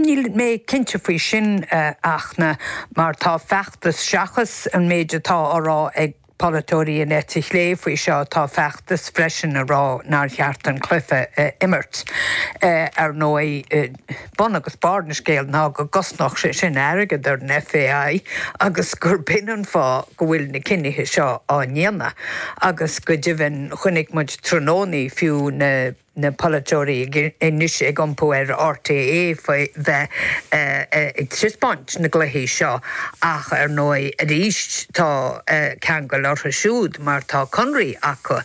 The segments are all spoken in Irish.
Níl mé cinnte faoi sin, a Fhachtna, mar tá feachtas, seachas an méid atá á rá ag polaiteoirí na heite clé faoi seo, tá feachtas freisin ag rá nár cheart an cluiche a imirt. Ar ndóigh, bun agus barr an scéil ná go gcosnódh sé sin airgead ar an FAI agus gur b'in an fáth go bhfuil na cinnithe seo á ndéanamh. Agus go deimhin, chonaic muid tráthnóna fiú na. na polaiteoirí anois ag iompú ar RTÉ faoi bheith ag taispeáint na gcluichí seo ach ar ndóigh arís tá ceangal orthu siúd mar tá conraí acu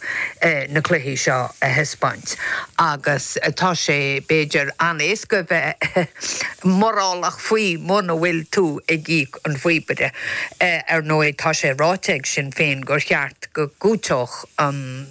na cluichí seo a thaispeáint agus tá sé b'fhéidir an-éasca bheith morálach faoi muna bhfuil tú ag íoc an phíobaire. Ar ndóigh tá sé ráite ag Sinn Féin gur cheart go gcúiteodh an.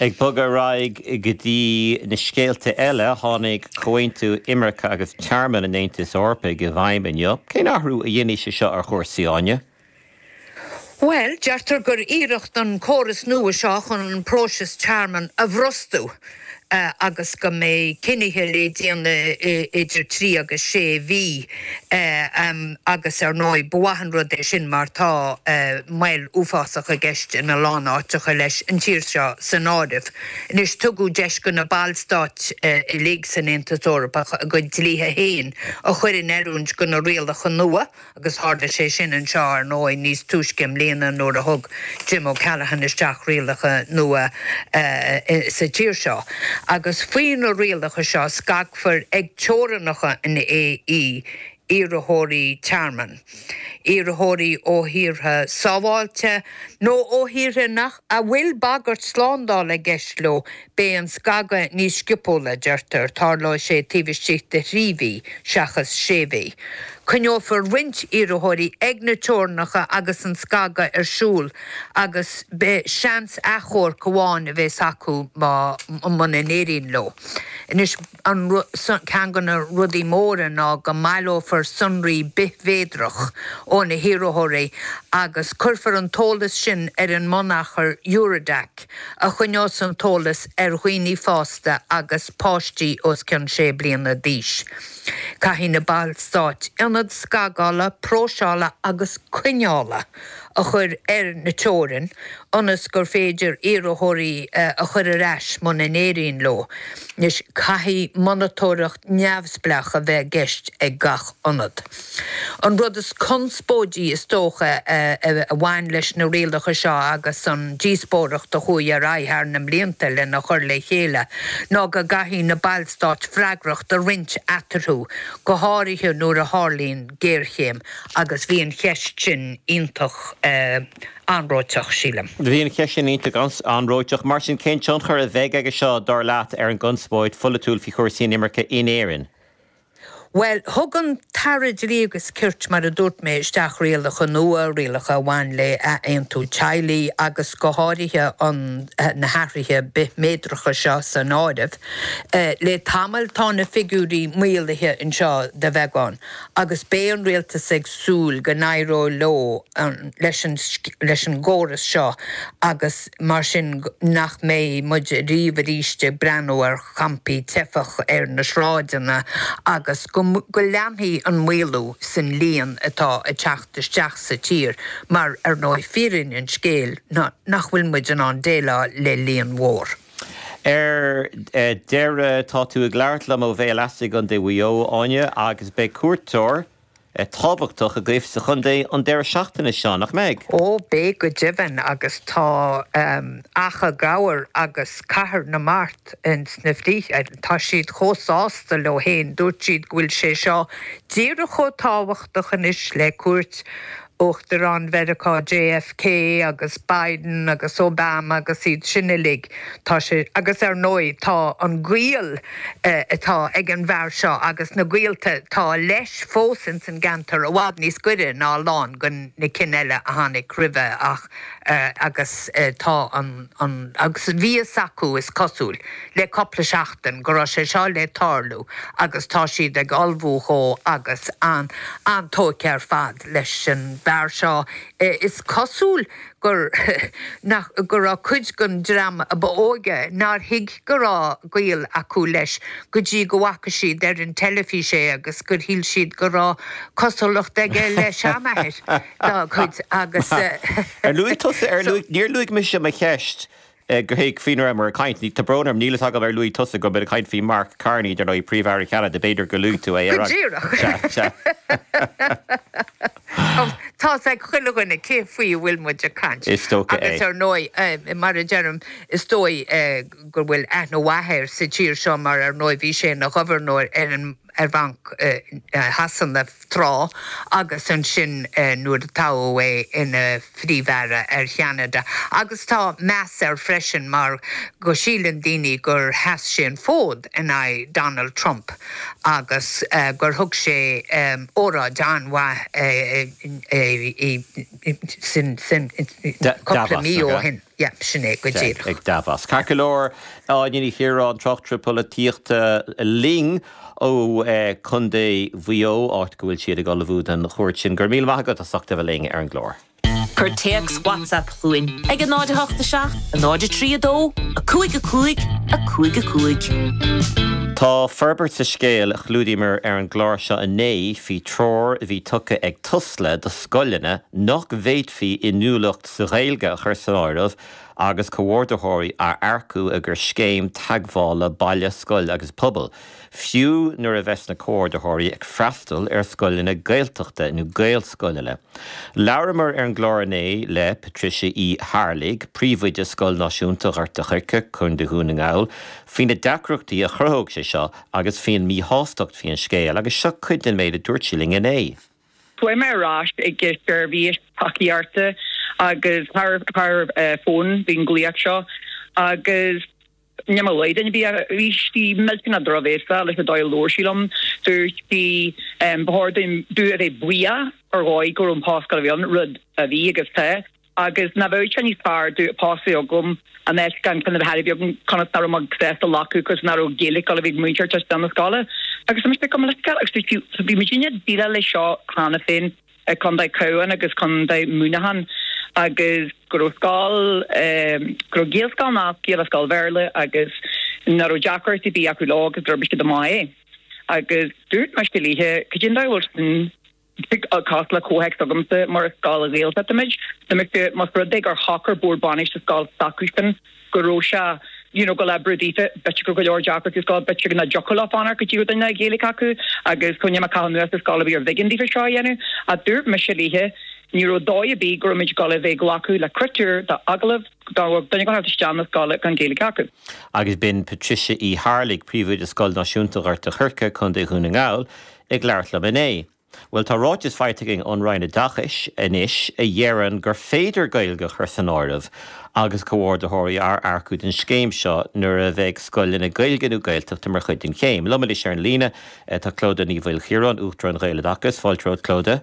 Ag bogadh ar aghaidh go dtí na scéalta eile, tháinig Comhaontú Imirce agus Tearmainn an Aontais Eorpaigh i bhfeidhm inniu. Cén athrú a dhéanfaidh sé seo ar chúrsaí, Áine? Bhuel, deirtear gur iarracht an córas nua seo chun an próiseas tearmainn a bhrostú. agus go mbeidh cinnithe le déanamh idir trí agus sé mhí agus ar ndóigh ba mhaith an rud é sin mar tá moill uafásach i gceist ina lán áiteacha leis an tír seo san áireamh. Anois tugadh deis go na ballstáit uilig san Aontas Eorpach a gcuid dlíthe féin a chur in oiriúint go na rialacha nua, agus tharla sé sin anseo, ar ndóigh, níos túisce i mbliana nuair a thug Jim O'Callaghan isteach rialacha nua sa tír seo. Agus faoi na rialacha seo, scagfar ag teorannacha an AE iarrthóirí tearmainn, iarrthóirí ó thíortha sábháilte nó ó thíortha nach a bhfuil bagairt slándála i gceist leo, Beidh an scagadh níos sciobtúla, a deirtear, tarlóidh sé taobh istigh de thrí mhí seachas sé mhí. Coinneofar roinnt iarrthóirí ag na teorainneacha agus an scagadh ar siúl agus beidh seans achomhairc amháin a bheas acu muna n-éiríonn leo. ceann de na rudaí móra ná go mbaileofar sonraí bithmhéadrach ó na hiarrthóirí agus cuirfear an t-eolas sin ar an mbunachar Eurodac a choinneálas an t-eolas ar dhaoine fásta agus páistí os cionn sé bliana d'aois. Caithfidh na ballstáit ionad scagála, próiseála agus coinneála. a chur ar na teorainneacha ionas gur féidir iarrthóirí a chur ar ais muna n-éiríonn leo. Anois, caithfidh monatóireacht neamhspleach a bheith i gceist ag gach ionad. An rud is conspóidí is dócha a bhain leis na rialacha seo agus an díospóireacht a chuaigh ar aghaidh thar na mblianta lena chur le chéile ná go gcaithfidh na ballstáit freagracht a roinnt eatarthu, go háirithe nuair a tharlaíonn géarchéim. Agus bhí an cheist sin iontach anróiteach, sílim. Bhí an cheist sin iontach anróiteach. Mar sin, cén tionchar a bheidh aige seo, dar leat, ar an gconspóid pholaitiúil faoi chúrsaí inimirce in Éirinn? Bhuel, thug an tAire Dlí agus Cirt, mar a dúirt mé, isteach rialacha nua, rialacha a bhain le athaontú teaghlaigh agus go háirithe an, na hathruithe bithmhéadracha seo san áireamh. Le tamall tá na figiúirí maolaithe anseo de bheagán. agus beidh an rialtas ag súil go n-éireoidh leo le, leis an gcóras seo agus mar sin nach mbeidh muid riamh arís ag breathnú ar champaí teifeach ar na sráideanna agus go leanfaidh an maolú san líon atá ag teacht isteach sa tír mar, ar ndóigh, fírinne an scéil ná nach bhfuil muid in ann déileáil le líon mhór. Ar deireadh, tá tú ag labhairt liom ó Bhéal Easa i gContae Mhaigh Eo, Áine, agus beidh cuairteoir tábhachtach agaibh sa chontae an deireadh seachtaine seo, nach mbeidh? Ó, beidh go deimhin, agus tá Achadh Gabhar agus Cathair na Mart sna bhfíbín, tá siad chomh sásta leo féin, dúirt siad go bhfuil sé seo díreach chomh tábhachtach anois le cuairt Uachtaráin Mheiriceá JFK agus Biden agus Obama agus iad sin uilig, tá sé, agus ar ndóigh tá an gaol atá ag an bhfear seo agus na gaolta atá leis fós ann ins an gceantar i bhfad níos goire ná a lán dho na cinn eile a tháinig roimhe ach agus tá an, agus bhí fhios acu is cosúil. le cupla seachtain go raibh sé seo le tarlú agus tá siad ag ullmhú dhó agus an, an-tógtha ar fad leis an bhfear seo. Is cosúil gur go raibh cuid dhon dream a ba óige nár thuig go raibh gaol acu leis go dtí go bhfaca siad ar an teilifís é agus gur shíl siad go raibh cosúlacht aige le seanathair dá gcuid agus. Ar luaigh tusa, ar luaigh, níor luaigh mise mo cheist. Cé faoi a raibh muid ag caint. Tá brón orm, níl fhios agam ar luaigh tusa go mbeadh muid ag caint faoi Mark Carney, dar ndóigh, príomh-aire Cheanada, b'fhéidir gur luaigh tú é ar aghaidh. Go díreach. Sea, sea. Tá's ag chuile dhuine cé faoi a bhfuil muid ag caint. Is dócha é. Agus ar ndóigh, mar a deirim, is dóigh go bhfuil aithne mhaith air sa tír seo mar ar ndóigh bhí sé ina ghobharnóir ar an ar Bhanc Shasana tráth agus ansin nuair a toghadh é ina Phríomh-Aire ar Cheanada agus tá meas air freisin mar go síleann daoine gur sheas sé an fód in aghaidh Donald Trump agus gur thug sé óráid an-mhaith sin cúpla mí ó shin. Yep, sin é go díreach. ag Davos. Ceart go leor, Áine Ní Chiaráin, tráchtaire polaitíochta linn ó Chontae Mhaigh Eo, áit go bhfuil siad ag ullmhú don chuairt sin. Go raibh míle maith agat as ucht a bheith linn ar an gclár. Cuir téacs WhatsApp chugainn ag 08 7 0 3 2 5 5 5 5. Tá forbairt sa scéal a chlúdaíomar ar an gclár seo inné faoi treoir a bhí tugtha ag Tusla do scoileanna nach bhféadfaí inniúlacht sa Ghaeilge a chur san áireamh agus comhordaitheoirí a earcú i gcomhair scéim teagmhála baile, scoil agus pobail, fiú nuair a bheas na comhordaitheoirí ag freastal ar scoileanna Gaeltachta nó Gaelscoileanna. Labhramar ar an gclár inné le Patricia Uí hArlaigh, Príomhoide Scoil Náisiúnta Ghort a' Choirce, Co Dhún na nGall, faoi na deacrachtaí a chruthóidh sé seo agus faoin míshástacht faoin scéal agus seo cuid den méid a dúirt sí linn inné. Chuaigh mé ar ais chuig an tseirbhís tacaíochta agus thar fón bhí an glaoch seo agus ní mé Laden a bhí air. Bhí sí millteanach drochbhéasach leis an dóigh a labhair sí liom. Dúirt sí ba chóir dom a bheith buíoch ar dhóigh go raibh an post againn, rud a bhí agus tá. Agus ná bheadh sé níos fearr dom post a bheith agam ná bheith gan ceann ar bith agam cionn is ná raibh mé sásta glacadh cionn is ná raibh Gaeilic ag múinteoir tar éis dom na scoile. Agus tá mise cuma leisciúil agus fiú bhí muid ag déileáil le seo cheana féin i Condae Cabháin agus Condae Múineachán agus go raibh scoil ehm go raibh Gaelscoil nasc iad le scoil Bhéarla agus ná raibh deacrachtaí ar bith acu leo agus d'oibir siad amach é. Agus dúirt mise léithe, cad é an diabhal sin? Tig an cás le comhthéacs agamsa mar is scoil Ghaeltachta muid. Diomaite más rud é gur shocair Bord Bainistíochta scoil s'acusan go raibh sé you know go leor brú daofa b'fhéidir go raibh go leor deacrachtaí sa scoil b'fhéidir ná dtiocfadh leo fanacht go dtí go raibh duine le Gaeilic acu agus coinníoll a caitheadh anuas sa scoil a bhí ar b'éigean daofa seo a dhéanamh ach dúirt mise léithe ní raibh dóigh ar bith go raibh muid ag gabháil a bheith ag glacadh le critéir don agallamh dá raibh duine ag teacht isteach chun na scoile gan Gaeilge acu. Agus b'in Patricia Uí hArlaigh, príomhoide Scoil Náisiúnta Ghort a Choirce, Co Dhún na nGall. Ag labhairt liom inné. Bhuel, tá ráiteas faighte againn ón Roinn Oideachais anois a dheireann gur féidir Gaeilge a chur san áireamh agus comhordaitheoirí a earcú don scéim seo nuair a bheidh scoileanna Gaeilge nó Gaeltachta mar chuid den scéim. Liom anois ar an líne, tá Clodagh Ní Mhaoilchiaráin, Uachtarán Ghaeloideachas. Fáilte romhat, Clodagh.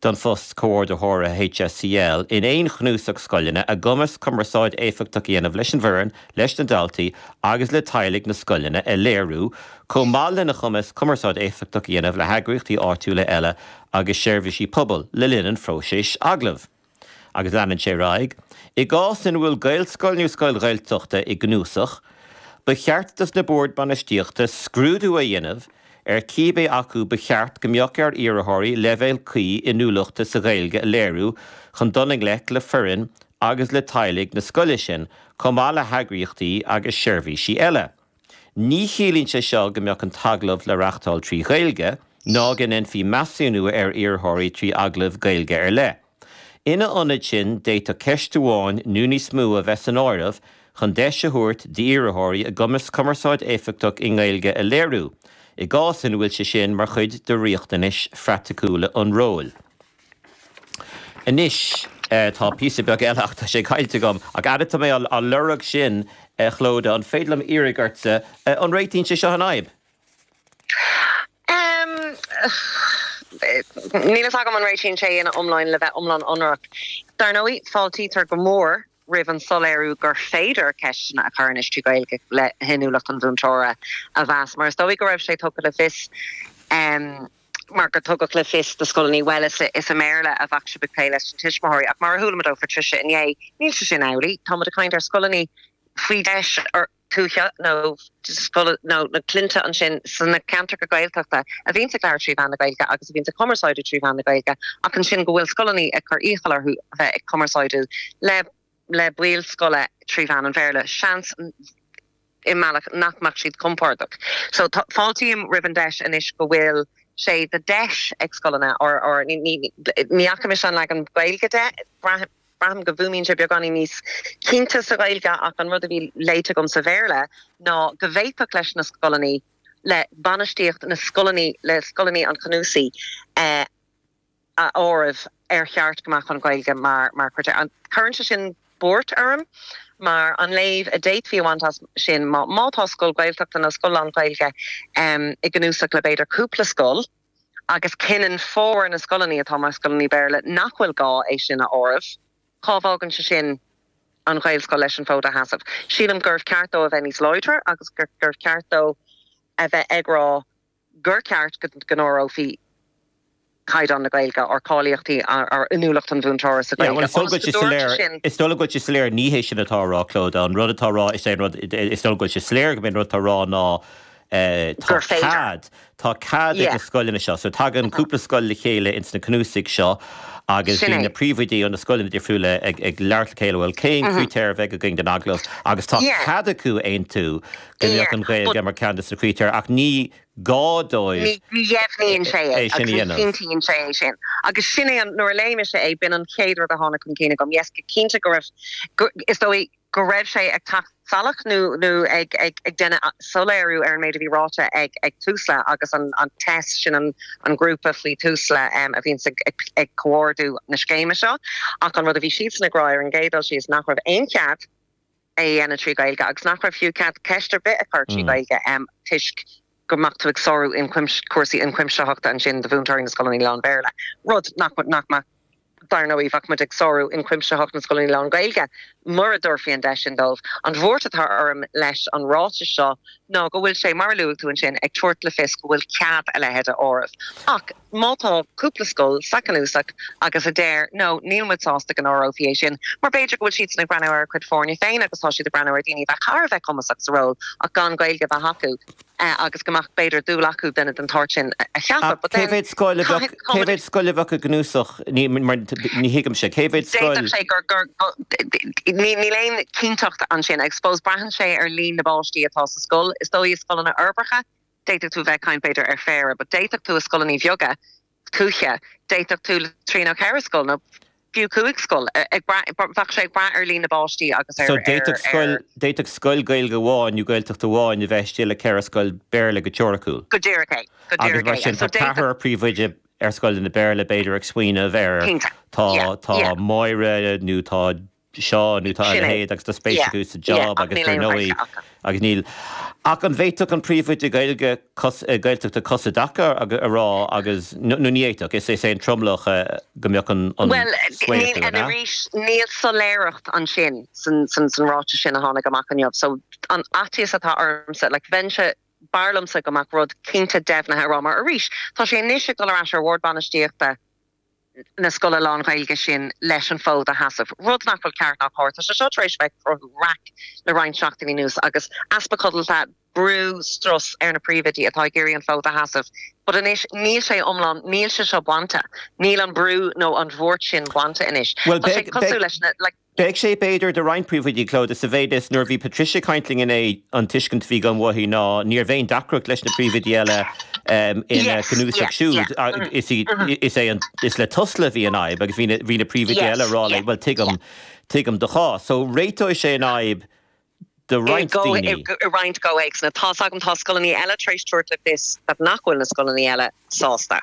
don phost Comhordaitheora HSCL in aon chnuasach scoileanna, a gcumas cumarsáid éifeachtach a dhéanamh leis an bhfoireann, leis na daltaí agus le teaghlaigh na scoileanna a léiriú, chomh maith lena chumas cumarsáid éifeachtach a dhéanamh le heagraíochtaí áitiúla eile agus seirbhísí pobail le linn an phróisis agallaimh. Agus leanann sé ar aghaidh, I gcás ina bhfuil Gaelscoil nó scoil Ghaeltachta i gcnuasach, ba cheart dos na Boird Bainistíochta scrúdú a dhéanamh, ar cibé acu ba cheart go mbeadh ar iarrthóirí leibhéal cuí inniúlachta sa Ghaeilge a léiriú chun dul i ngleic le foireann agus le teaghlaigh na scoile sin, chomh maith le heagraíochtaí agus seirbhísí eile. Ní chiallaíonn sé seo go mbeadh an t-agallamh le reáchtáil trí Ghaeilge, ná go ndéanfaí measúnú ar iarrthóirí trí agallamh Gaeilge ar leith. Ina ionad sin, d'fhéadfadh ceist amháin nó níos mó a bheith san áireamh chun deis a thabhairt d'iarrthóirí a gcumas cumarsáid éifeachtach i nGaeilge a léiriú, i gcás ina bhfuil sé sin mar chuid de riachtanais phraiticiúla an róil. Anois, tá píosa beag eile ach tá sé caillte agam. Ach fad atá mé á lorg sin, a Chlodagh, an féidir liom fiafraí díotsa, an réitíonn sé seo an fhadhb? Níl fhios agam an réitíonn sé ina iomláine le bheith iomlán ionraic. Dar ndóigh, fáiltítear go mór roimh an soiléiriú gur féidir ceisteanna a chur anois trí Ghaeilge le hinniúlacht an mhúinteora a mheas, mar is dóigh go raibh sé tugtha le fios mar go dtugadh le fios do scoileanna, bhuel, is i mBéarla a bheadh sibh ag plé leis na tuismitheoirí. Ach mar a chuala muid ó Phatricia inné, níl sé sin amhlaidh, tá muid ag caint ar scoileannaí faoi DEIS, tuaithe nó na cinn ansin sna ceantracha Gaeltachta a bhíonns ag labhairt trí mheán na Gaeilge agus a bhíonns ag cumarsáidiú trí mheán na Gaeilge ach ansin go bhfuil scoileannaí ag cur iachall orthu a bheith ag cumarsáidiú le le baill scoile trí mheán an Bhéarla, seans i mbealach nach mbeadh siad compordach. So fáiltím roimh an deis anois go bhfuil sé de deis ag scoileanna ar ní fhaca mise an leagan Gaeilge de, braithim, Braithim go bhfuaimíonn sé beagáinín níos cinnte sa Ghaeilge ach an rud a bhí léite agam sa Bhéarla ná go bhféadfadh leis na scoileannaí, le bainistíocht na scoileannaí, le scoileannaí an chnuasaigh a áireamh ar cheart go mbeadh an Ghaeilge mar mar chritéir. Cuireann sé sin buairt orm mar an léamh a d'fhéadfaí a bhaint as sin má tá scoil Ghaeltachta nó scoil lán-Ghaeilge i gcnuasach le b'fhéidir cúpla scoil, agus cinneann formhór na scoileanna atá mar scoileanna Béarla nach bhfuil gá é sin a áireamh, cá bhfágann sé sin an Ghaelscoil leis an fód a sheasamh? Sílim gurbh cheart dó a bheith níos láidre agus gurbh cheart dó a bheith ag rá gur cheart go n-áireofaí caighdeán na Gaeilge, ar cháilíochtaí, ar inniúlacht an mhúinteora sa Ghaeilge, ionas go dtabharfadh sé sin. Is dóigh liom go bhfuil sé soiléir, ní hé sin atá á rá, Clodagh. An rud atá á rá, is é an rud, is dóigh liom go bhfuil sé soiléir gurb é an rud atá á rá ná, gur féidir. Tá cead ag na scoileanna seo, so tagann cúpla scoil le chéile ins na cnuasaigh seo agus bíonn na príomhoidí ó na scoileanna difriúla ag labhairt le chéile, bhuel, cén critéar a bheidh againn don agallamh? Agus tá cead acu a aontú go mbeadh an Ghaeilge mar cheann de na critéir ach ní gá dóibh é sin a dhéanamh. Ní dheimhníonn sé é agus ní chinntíonn sé é sin. Agus sin é an, nuair a léigh mise é, b'in an chéad rud a tháinig chun cinn agam, yes, go cinnte go raibh, is dóigh, go raibh sé ag teacht salach nó ag déanamh soiléiriú ar an méid a bhí ráite ag Tusla agus an TESS, sin an grúpa faoi Tusla a bhíonns ag comhordú na scéime seo. Ach an rud a bhí siadsan ag rá ar an gcéad dul síos nach raibh aon chead é a dhéanamh trí Ghaeilge agus nach raibh fiú cead ceist ar bith a chur trí Ghaeilge toisc, go mbeadh tú ag sárú cúrsaí ionchuimsitheachta ansin do mhúinteoirí na scoileanna lán-Bhéarla, rud nach mbeadh, dar ndóigh. Bheadh muid ag sárú ionchuimsitheacht na scoileanna lán-Ghaeilge mura dtabharfaí an deis sin dóibh. An bhuairt atá orm leis an ráiteas seo ná go bhfuil sé, mar a luaigh tú ansin, ag tabhairt le fios go bhfuil cead a leithéid a áireamh. Ach. Má tá cúpla scoil sa chnuasach agus a deir no, níl muid sásta go n-áireofaí é sin, mar b'fhéidir go bhfuil siadsan ag breathnú ar a gcuid foirne féin agus tá siad ag breathnú ar dhaoine a bheadh thar a bheith cumasach sa ról ach gan Gaeilge a bheith acu agus go mbeadh, b'fhéidir, dúil acu duine den tsórt sin a cheapadh. But then, cé mhéad scoil a bheadh i gcnuasach, ní thuigimse, cé mhéad scoil? D'fhéadfadh sé gur, níl aon chinnteacht ansin. I suppose, braitheann sé ar líon na bpáistí atá sa scoil. Is dóigh i scoileanna uirbeacha, D'fhéadfadh tú a bheith ag caint, b'fhéidir, ar phéire, but d'fhéadfadh tú i scoileannaí bheaga tuaithe, d'fhéadfadh tú trí nó ceithre scoil nó fiú cúig scoil, ag brath, bheadh sé ag brath ar líon na bpáistí agus ar, ar. So d'fhéadfadh scoil, d'fhéadfadh scoil Gaeilge amháin nó Gaeltachta amháin a bheith istigh le ceithre scoil Béarla go teoiriciúil. Go díreach é, go díreach é. Agus mar sin tá ceathrar príomhoide ar scoileanna Béarla, b'fhéidir, ag smaoineamh ar, tá, tá Máire nó tá seo, nó tá a leithéid agus tá spéis acu sa jab agus dar ndóigh agus níl ach an bhféadfadh an príomhoide Gaeilge, Gaeltachta cos i dtaca a rá agus nó ní fhéadfadh, is é an tromlach go mbeadh an svae acu, an ea? Arís, níl soiléireacht ansin san san ráiteas sin a tháinig amach inniu so an faitíos atá ormsa like bheinnse, b'fhearr liomsa go mbeadh rud cinnte deimhnithe a rá mar arís tá sé anois ag dul ar ais ar Bhord Bainistíochta, na scoile lán-Ghaeilge sin leis an bhfód a sheasamh, rud nach bhfuil ceart ná cóir. Tá sé seo tar éis a bheith ag cruthú raic le roinnt seachtainí anuas, agus easpa codlata, brú, strus ar na príomhoidí atá ag iarraidh an fód a sheasamh. But anois, níl sé iomlán, níl sé seo bainte, níl an brú nó an bhuairt sin bainte anois. Tá sé ag tosú leis na, like, Beidh sé b'fhéidir do roinnt príomhoidí, Clodagh, sa mhéid is, nuair a bhí Patricia ag caint linn inné, an tuiscint a bhí agam uaithi ná níorbh aon deacracht leis na príomhoidí eile ina gcnuasach siúd. Is é an, is le Tusla a bhí an fhadhb agus bhí na príomhoidí eile a rá léi, bhuel, tuigim, tuigim do chás. So, réiteoidh sé an fhadhb do roinnt daoine. I roinnt comhthéacsanna. Tá's agam, tá scoileanna eile tar éis tabhairt le fios nach bhfuil na scoileanna eile sásta.